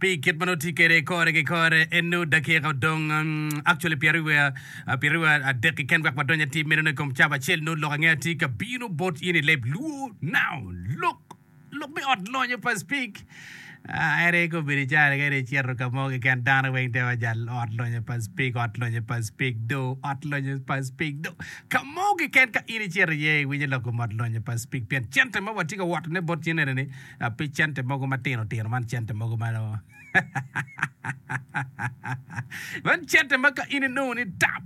Pi kit ma nongo tye kwede kore ki kore, en nongo dakika odong actually pyeraryo adek keken wek wadony atir meno i kom cab acel nongo lok ange atir ka bino bot in i leb luo now look lok me ot lonyo pa speak Ah, ere ko bedo cara ka ere cito ka mo keken dano weng te wa jal ot lonyo pa speak ot lonyo pa speak do ot lonyo pa speak do ka mo keken ka in icito iye iwinyo lok kom ot lonyo pa speak pien cente ma watye ka wotone bot cen enini Pi cente mogo matino tino man cente mogo ma man cente ma ka in inongo ni tap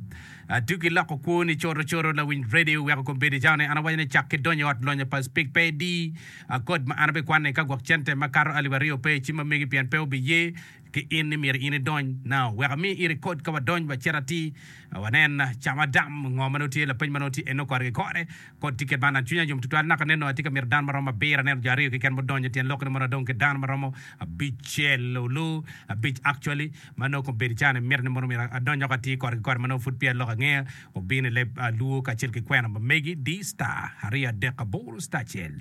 tuki iloko kwoni coto coto lawiny radio iweko kombeddi cawa ni an awaco ni cak ki donyo i ot lonyo pa speak pe di kod ma an abikwanne ka gwok cente makato alip aryo pe ci ma megi pien pe obiye ki in ni myero in idony now wek ami in ikod ka wadony wacit atir wanen ca ma dam ngo ma nongo tye lapeny ma nongo tye eno kore ki kore kod ticket man an cwinya yom tutwal naka nen nongo atye ka mito dano ma romo abiro aneno jo aryo keken mudonyo tyen lok ni mono adong ki dano ma romo abicel olu abic actually ma nongo kong bedo calo ni mito ni mono myero adony wek atir kore ki kore ma nongo pud peya lok angeya obino ileb luo kacel ki kwena ma megi di star aryo adek aboro star acel.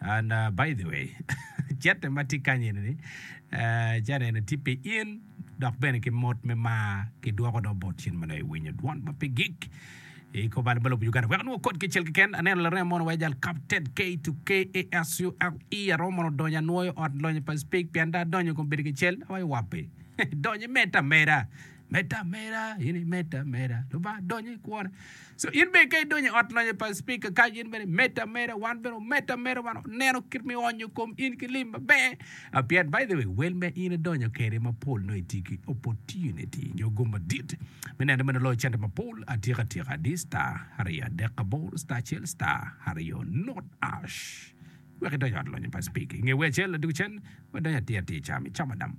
And by the way cente ma tye kany eni ci aneno tye pi in dok bene ki mot me mar ki dwoko dong bot cen ma loyo winyo dwon ma pe gik i kor bal me lobo Uganda wek onongo kod kicel keken aneno larema mono wa jal kap ted K to K A S U L E aromo mono donyo anwoyo ot lonyo pa speak pien da adonyo kong bedo kicel awayo wappi donyo imed ta meda Medda meda in i medda meda lubanga donyo i kwona so in bene ka idonyo i ot lonyo pa speaker ka in bene medda meda wan bene omedda meda wan oneno kit mi onyo kom in ki lim maber a pien by the way wel ma in idonyo kede mapol no iti ki opportunity nyo gum madit me neno meno loyo cente mapol atika tika di star aryo adek aboro star acel star aryo not ash wek idonyo ot lonyo pa speaker inge wer acel laduk cen wadonyo atir atir cam icamo dam